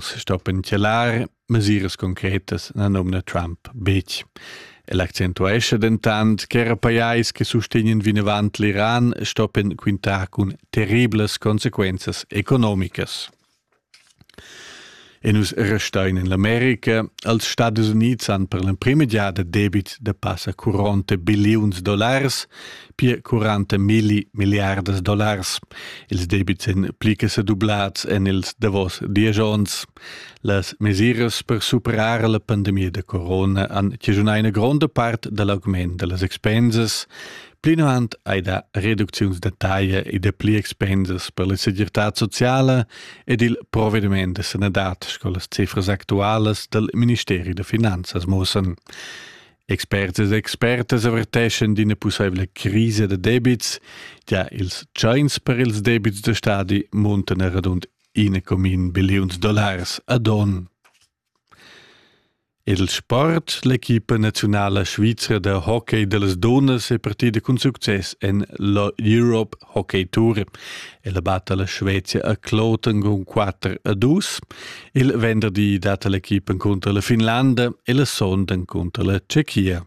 stoppen tgelar mesiras concretas na nomna Trump betg. El accentuescha dentant ch'era pajais che sustegnen vinavant l'Iran stoppen quintar cun terriblas consequenzas economicas. E nus restein in l'America, als Stadis Unids han per l'emprima giada debit da passa 40 billions dollars, pia 40 milli milliardas dollars. Ils debits èn pli che sedublads en ils davos dies onns. Las mesiras per superar la pandemia da corona han chigiunà ina gronda part da l'augment da las expensas. Plinavant hai dà reducziuns da taglia e da pli expensas per la segirtad sociala ed il provediment da sanadad, sco las cifras actualas dal Ministeri da finanzas mussan. Experts ed expertas averteschan d'ina pussaivla crisa da debits, gia ils tschains per ils debits da stadi muntan er radund 1,1 billiuns dollars ad onn. Ed il sport, l'equipa nazionala svizra da hockey dellas dunnas è partida cun success en la Europe hockey tour. El batta la Svezia a Kloten con 4 a 2. Il venderdi dat l'equipa contro la Finlanda e la sonda contro la Tschechia.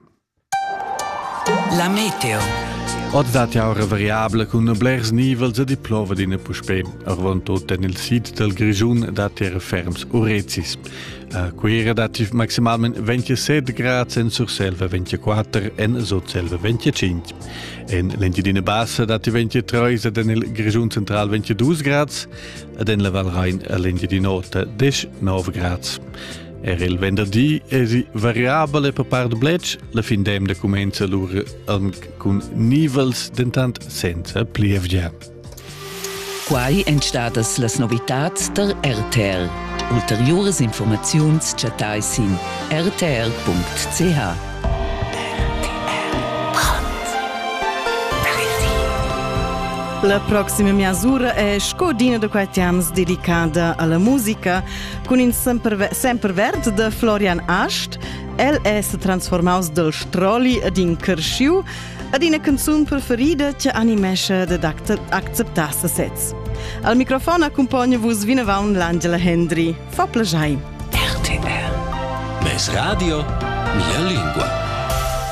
La meteo. Oz dat jau una variabile con blers nivels e di plova d'ina puspè. Arvon tot en il sid del Grigiun dat er ferms urecis. A Cuira dat maximalmente 27 gradi, en Surselva 24 en Sotselva 25. En l'Engiadina Bassa datti 23 ed en il Grischun Central 22 grads ed en la Val Rain e l'Engiadina Ota 19 grads. Er il venderdi èsi variabel e per part bletsch. La fin d'emna cumenza lur anc cun nivels, dentant senza plievgia. Quai èn stadas las novitads tar RTL. Ulteriuras informaziuns chattai sin rtl.ch. La proxima mesura è Scodina de Quatians dedicada alla musica cun in semperverd de Florian Ast. El è se transformaus del stroli ad in cresciu ad ina canzun preferida che animesce ed accepta sesez. Al microfon accompagna vos vinavant l'Angela Hendry. Fa piacere. RTR. Mes radio, mia lingua.